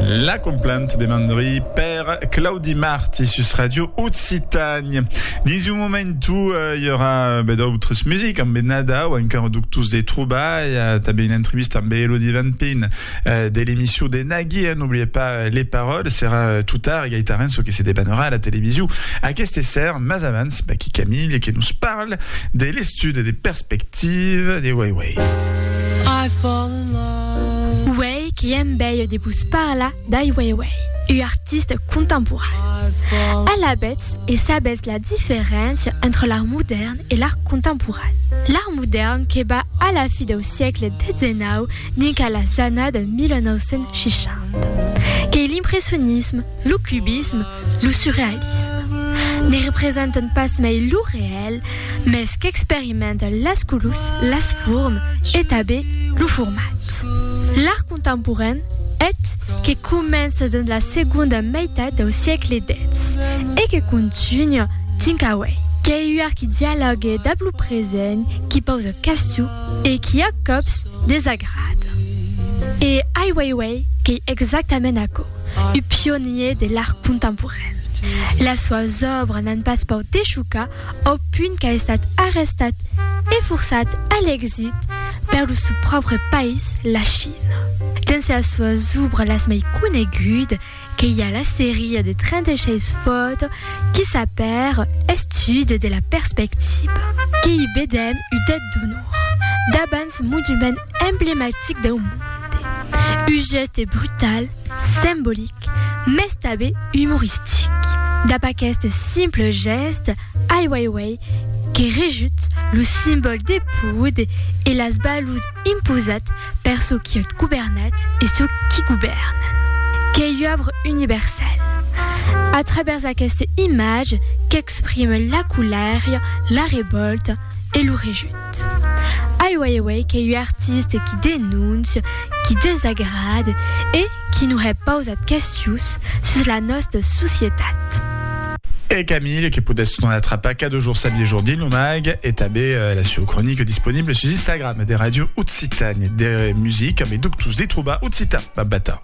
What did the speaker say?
La complant de Mandri per Claudi Marti sus Radio Occitània. Dins un momentu i aurà be d'autres music amb be Nadau, encara doctors de trobalha, tanben una entrevista amb be Elodie Van Pin de l'emission de Nagui, eh, n'oubliez pas les paroles, serà tot tard, Gaita Renso que se debanerà a la television aqueste ser, mas avans, Baky Camille que nos parle de l'estud de Perspective de Wei Wei. I fall in love. Uèi que èm bèia de vos parlar d'Ai Weiwei, ua artista contemporana. Alabètz e sabètz la diferéncia entre l'art modèrn e l'art contemporan. L'art modèrn que va a la fi dau siecle XVII dinc a las annada 1960. Qu'ei l'impressionisme, lo cubisme, Lo surrealisme ne representant pas mai lo reèl, mes qu'experimenta las colors, las formes e tanben lo format. L'art contemporain, eth, que comença dens la segonda meitat dau siecle xix e que continua tinc auei, qu'ei ua qui dialògue dab lo present, qui pausa question e qui a còps desagrada. E ai uei uei qu'ei exactament aquò. Un pionier de l'art contemporain. Las soas òbras n'an pas paut de chocar au punt qu'a estat arrestat e forçat a l'exit per lo sou pròpre país, la China. Dens las soas òbras las mei conegudas que i a la seria de 36 fòtos qui s'apèra Estude de la perspectiva, que i vedèm un det d'onor, d'abans monument emblematic dau monde, un gèste brutal, sembolic, mès tabé umoristic. Dab aqueste simple gèste, Ai Weiwei que rejut lo simbòl de poud e las balud imposat per çò qui ot governat e çò qui govèrnan. Qu'ei ua òbra universala, a travèrs aqueste imatge qu'exprime la colèria, la revòlta e lo rejut. Ai Weiwei qu'ei ua artiste qui denóncia, qui desagrade e qui nos hè pausat questions sus la nòsta societat. E Camille que podètz non atrapar cada jorn sa biejor dins lo mag e tanben la sua cronique disponible sus Instagram de Radio Occitània de musica, me duc tous de trobar occitan, babata.